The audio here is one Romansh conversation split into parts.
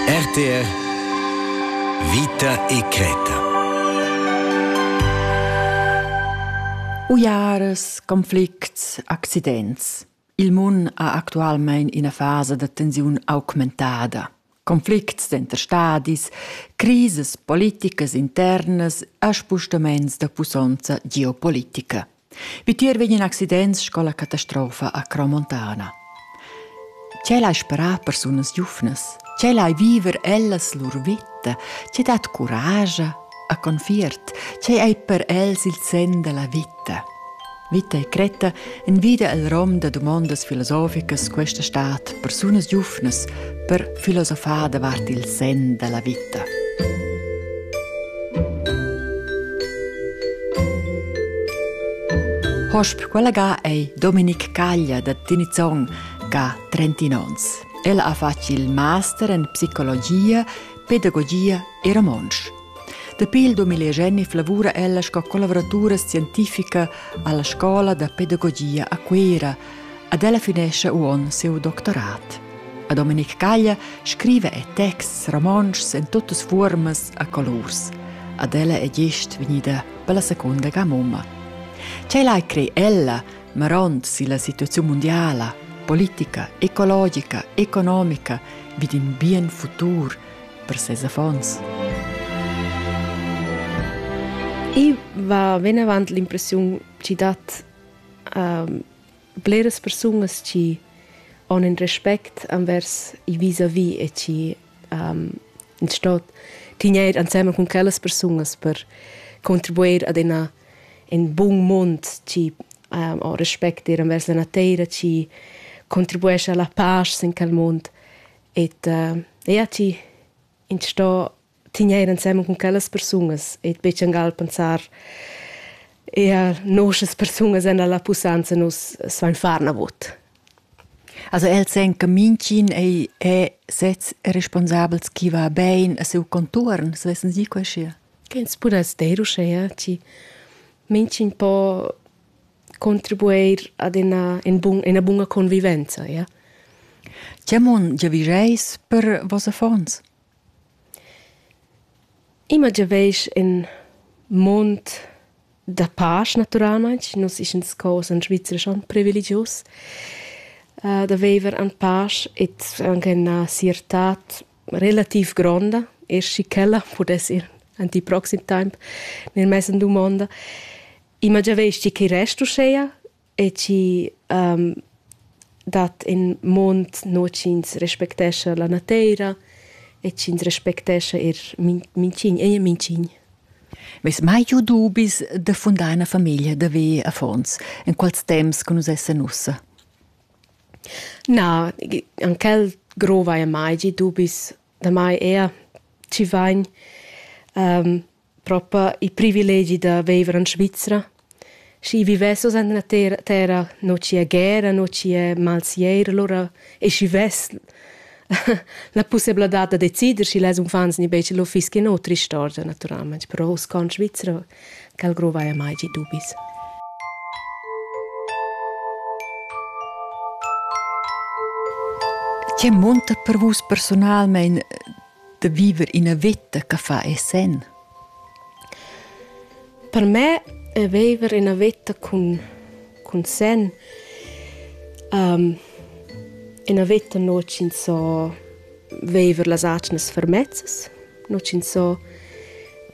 RTR Vita e creta Uiaras, conflicts, accidents. Il mun ha actualmein ina fasa da tensiun augmentada. Conflicts denter stadis, crises politicas internas e spostaments da pussonza geopolitica. Vitier vegnan accidents sco la catastrofa a Cromontana. Tgel hai sperà persunas giuvnas? Tgel hai viver ellas lur vita? Tge dat curage a confiert? Tgei ei per els il sen della vita? Vita e cretta envida el rom da domondas filosoficas questa stat persunas giuvnas per filosofar davart il sen da la vita. Hosp quella ga ei Dominic Caglia da Tinizong ga 30 ons. El ha fatg il master en psicologia, pedagogia e romontsch. Dapi il 2011 lavura ella sco collavuratura scientifica alla scola da pedagogia a Cuera ed ella finescha uonn siu doctorat. A Domenic Caglia scriva e texts romontschs en tuttas fuormas a colurs. Ad ella è gest vegnida per la seconda ga mumma. Tgei lai crei ella, marond si la situazione mondiala, politica, ecologica, economica, vid in bien futur, per ses affons. I va venavant l'impressiun chi dat ähm, bleras persunas chi han un respect envers i vis-a-vis e chi ähm, stot tigner ansemel con quellas persunas per contribuir ad una in bun mund chi ähm, ho respect ir envers la nateira chi contribuesce alla pace in quel mund Et uh, ja ti in sto tigneir ensemen con quellas persunas et be changal pensar ja nosas persunas en la pusanza nus svain far navot. Also el sen che mincin ei è sez responsabels chi va bein a seu contuorn, se vessen sie quesche. Che ins pudas deir uschea, ti mincin po contribuer ad ina, in bun, ina bunga convivenza, ja. Tge mon giavischeis per voss affons? Immer giavisch in mond da pace, naturalmente. Nus ist uns cos in Schweizer schon privilegius, uh, da viver an pace e anche una sirtà relativ gronda. Er si quella pudesse ir in die proxim Time nel mese domanda. I ma giavesti che rest uschea e chi um, dat in mond no ch'ins respectescha la nateira e ch'ins respectescha er minchign, ei minchign. Meis mai giu dubis da fundar una famiglia da ve affons, in quals temps che nus essen ussa? Na, an quel grova e mai gi dubis da mai er ci vain um, propa il privilegi da viver in Svizra. Schi vivessos en la terra, terra non ci è guerra, non ci è malsier, allora e schi vess la possibilità da decider schi les unfants ni bece lo fischi no tristorgia naturalmente, però us con Svizra cal grovaia mai gi dubis. Che monta per vus personalmente da viver ina veta che fa e senn. Per me è viver ina veta cun, cun senn um, ina veta non ci so viver las atgnas fermezzas, non ci so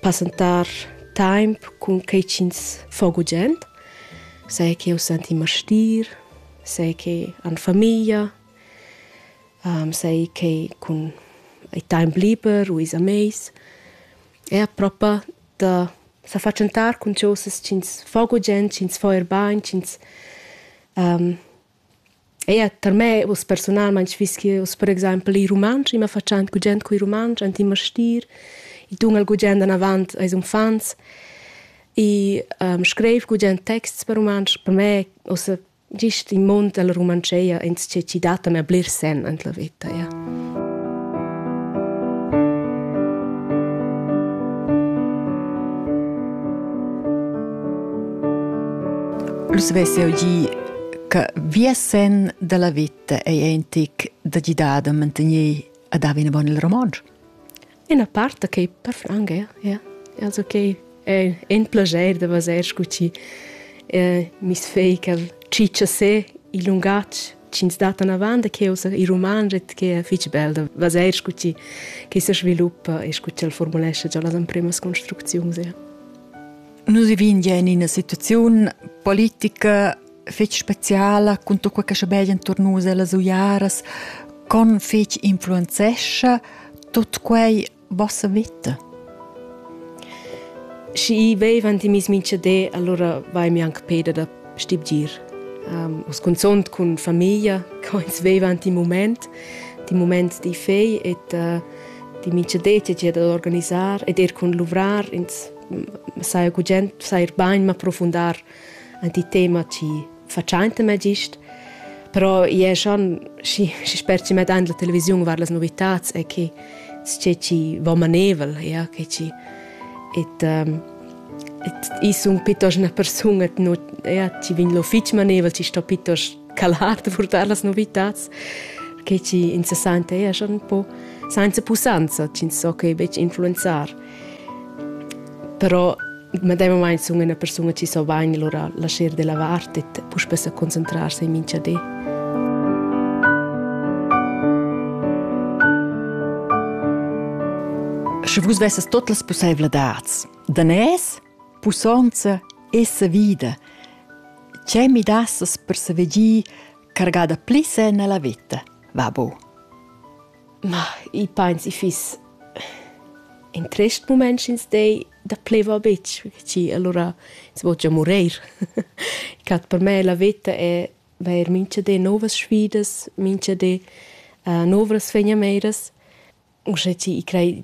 passentar temp cun che ci fo gugent, sai che eu senti martir, sai che an famiglia sai che cun il temp liber u ils amis er propa da sa fatschentar cun chosas ch'ins fa gugent, ch'ins fa er bain, ch'ins eir tar me uss persunalmaing fiss que uss per exaimpel il rumantsch. I ma fatschan gugent cul rumantsch ant in mastir. I dun el gugent anavant ais uffants. I scriv gugent texts per rumantsch. Per me uss Gist in mund dalla Rumantscheia ins che ci dat a bler sen en la veta. Ja. Lus vesse eu gi che via sen dalla vita ei entic da gidar da mantegner ad haver una bona il romage. Ina part da quei perfranc ja, ja. Also quei è in plascher da vaser sco ti. Eh, mi's fei quel cicciasé il lungatg ch'ins dat anavant da cheu sa i roman ret che è fich bel da vaser sco ti che se sviluppa e sco ti el formulescha già las empremas construcziuns ja. Nus vivin ja in ina situaziun politica fetg speciala cun tut quei che schabegia entuorn nus ellas uiaras, con fetg influenzescha tut quei vossa vita. Schi vevan ti mis mincha de, allora vai mi anche peda da stibgir. Um, os consont cun famiglia, co ins vevan ti moment, ti moment di fei et uh, di mincha de ti da organisar et er cun luvrar ins sai gugent sai bain ma profundar ein ti tema chi fatschainta me gist però ie schon schi schi sper chi met an la televisiun var las novitats e che sce chi va manevel ja che chi et um, et i sun pitos una persuna no ja chi vin lo fich manevel chi sto pitos calar da purtar las novitats che chi interessante ja schon un po senza pusanza chi so che bec influenzar Però medemamain sun üna persuna chi so bain lura lascher da lavar e puspè sa concentrarsi in mincha di. Sche vus vessas tot las pussevladats, danès, pussonza e savida, c'è mi dassas per saver gi cargada pli se nella vita, va bu? Ma i pains i fiss in trist mument sch'ins dei da pleva betg, perche alura ins vo gia mureir. Cat per me la veta è vair mincha di novas sfidas, mincha di novras fegnameiras. Uschè chi i crei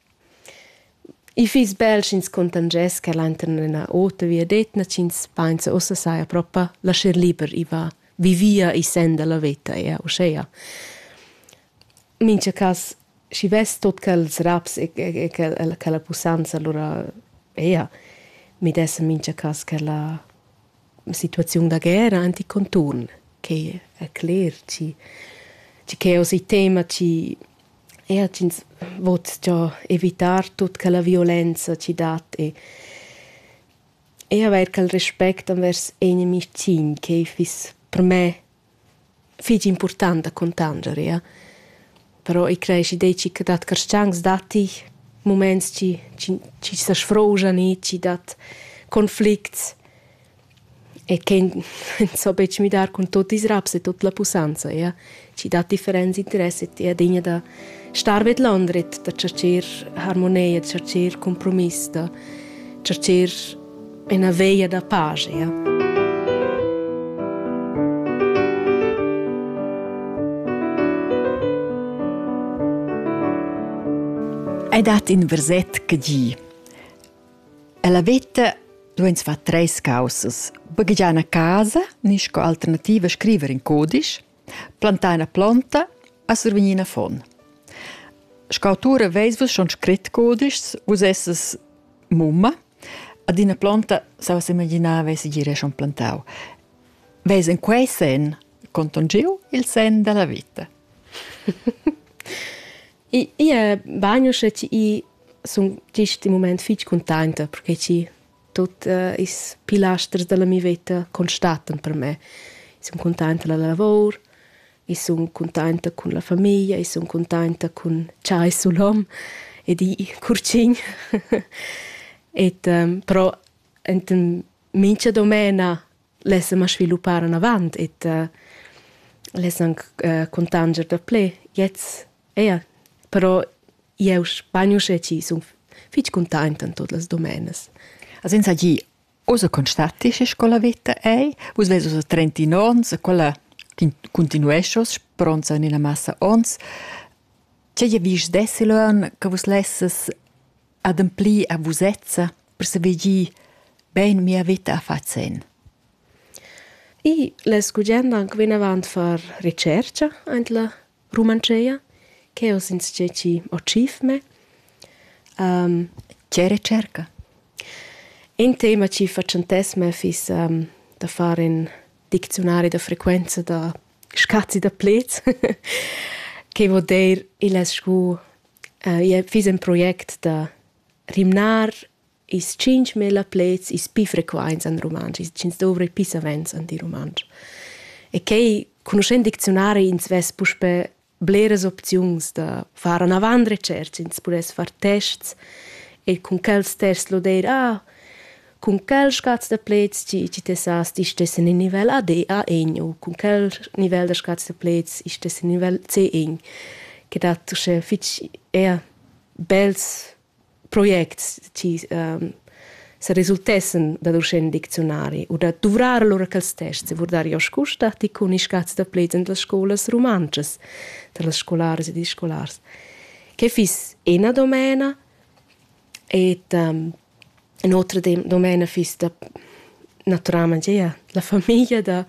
I fiss bel sch'ins contangess quel enturn ina ota viadetna ch'ins pensa ussa saja propa lascher liber i va vivia i senda la veta e uschea. Mincha cas schi vess tot quels raps e e quella quella pussanza alura eir midessa mincha cas quella situaziun da guerra ant il conturn. Quai è cler chi chi que hoz il tema chi Eir ch'ins vot sto evitar tut quella violenza chi dat e e avair quel respect envers inimis cin che fiss per me fich important da cuntanger, ia. Però i creeschi deci che dat carschancs datti muments chi chi chi sa sfrouschan i, chi dat conflicts. e quei so betg midar cun tot ils raps e tut la pussanza, ja. Schi dat differents interess e ti adegna da star vedlondret, da tschercher harmonia, da tschercher compromiss, da tschercher ina veia da pace, ja. Hai dat in verset che di Ella veta dueins far treis caussas. Baghegiar una casa ni sco alternativa scriver in codice, plantar una planta e survegnir una font. Sco autura veis vus schon scrit codices, vus esses mumma, ad una planta, se vos imaginava, si gire schon plantau. Veis in quei sen contongiu il sen della vita. Ie bagno sche ti sun gist in mument fich cuntainta perche chi tuot uh, ils pilasters da la mia veta constatan per me. I sun cuntainta da la lavor, i sun cuntainta cun la famiglia, i sun cuntainta cun cha es sul hom ed i curcin. et um, però ent in mincha domena l'essem a sviluppar anavant et uh, l'essem anc uh, contanger da ple jetzt eia però eu bagn uschè chi sun fich containt in tot las domenas as ins gi osa constatisci scola vita ei vus ves osa 39 ons quella continuescios pronza in ina massa ons Tge je vis desi lön che vus lesses ademplir a vusezza per saver gir bein mia veta a far sen. I la scugenda anche venavant far ricerca ant la Rumancea, che ho since che ci ho cif me. Um, che ricerca? Un tema ci facentess me fis um, da fare in diczionari da frequenza da scazzi da plets, che vuol dir il scu uh, fiss in project da rimnar is 5.000 plets is pi frequents an rumantsch, is 5 dovre pi savens an di rumantsch. E quei, conoscendo dizionari, ins vess puspe bleres opziuns da far an avant recerch, ins pudess far tests e cun quels tests loder, ah, cun quel scaz da pleds chi chi tessas ti stessen in nivel AD A1 u cun quel nivel da scaz da pleds ich stessen in nivel C1 che dat uschè fich eir bels projects chi ähm, se resultessen dad uschè ün dicziunari u da duvrar lura quels tests e vurdar jo scu statti cun i scaz da pleds in las scolas rumantschas, tra las scolaras ed ils scolars. Que fiss ena domena Et um, in otra domena fiss da naturalmain gia la famiglia da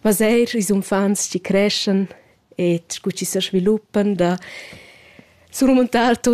vaser ils uffants chi creschan et cu chi se sviluppan da su rumentar tot